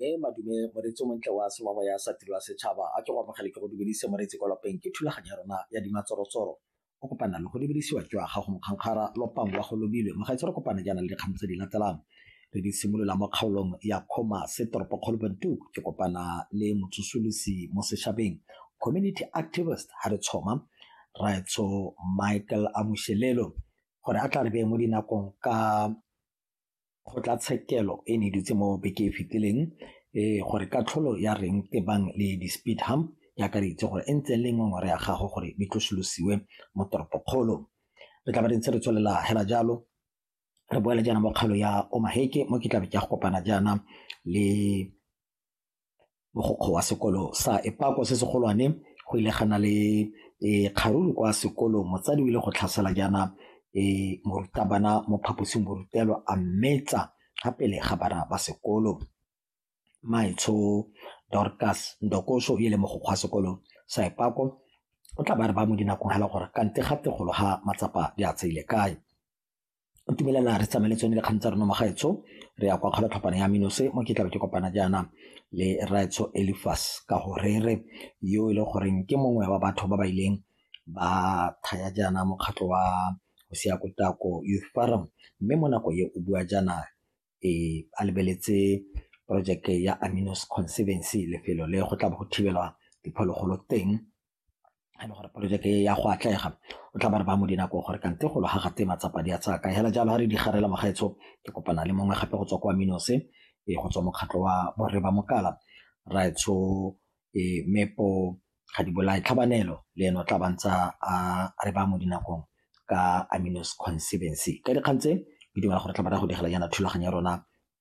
mme madume moreetsi o montle wa semamo ya sa tiro ya setšhaba a ke go amogele ke go dumedise moreetsi kwa lapeng ke thulaganyo ya rona ya dimatsorotsoro o kopana le go lebelisiwa ke wa gago mokgankgara lopang wa go lobile mogaitse re kopana jaana le dikgang tse di latelang re di simolola mo kgaolong ya kgoma se toropo kgolobantu ke kopana le motsosolosi mo setšhabeng community activist ha re tshoma raetsho michael amushelelo gore a tla re beye mo dinakong ka Kgotlatshekelo e ne e dutse mo beke e fetileng e gore katlholo ya reng tebang le di-speed hump e akareditse gore e ntse le ngongore ya gago gore di tlosolosiwe mo toropokgolo. Re tla ba re ntse re tswelela hela jalo re boela jaana mo kgaolo ya Omaheke mo ke tlabe ke ya go kopana jaana le mogokgo wa sekolo sa Epako se segolwane go ile gana le e, kgaruru kwa sekolong motsadi o ile go tlhasela jaana e, morutabana mo phaposing borutelwa a mmetsa ga pele ga bana ba sekolo maitsho dorcas ndokoso e le mogokgo wa sekolo sa Epako o tla ba re ba mo dinakong hela gore kante ga tegolo ha matsapa di a tseile kae ntumeleleng re tsamaye le tsone dikgang tsa rona magaetsho re ya kwa kgolo tlhopana ya minose mo ke tlabe ke kopana jaana le raetsho elifas ka go rere yo e le goreng ke mongwe wa batho ba ba ileng ba thaya jaana mokgatlho wa go siya kotako youth forum mme mo nako e o bua jaana e a lebeletse projeke ya aminos conservancy lefelo le go tla bo go thibelwa diphologolo teng ga e le gore poloteke ya go atlega o tla ba re ba mo dinako gore kante golo ga gate matsapa di a tsaya ka hela jalo ga re di garela mogaetsho ke kopana le mongwe gape go tswa kwa minose e go tswa mokgatlho wa borre ba mokala raetsho e mepo ga di bolae tlhabanelo le ene o tla bantsa a re ba mo dinakong ka aminos conservancy ka dikgang tse ke dumela gore tla ba ra go digela yana thulaganyo ya rona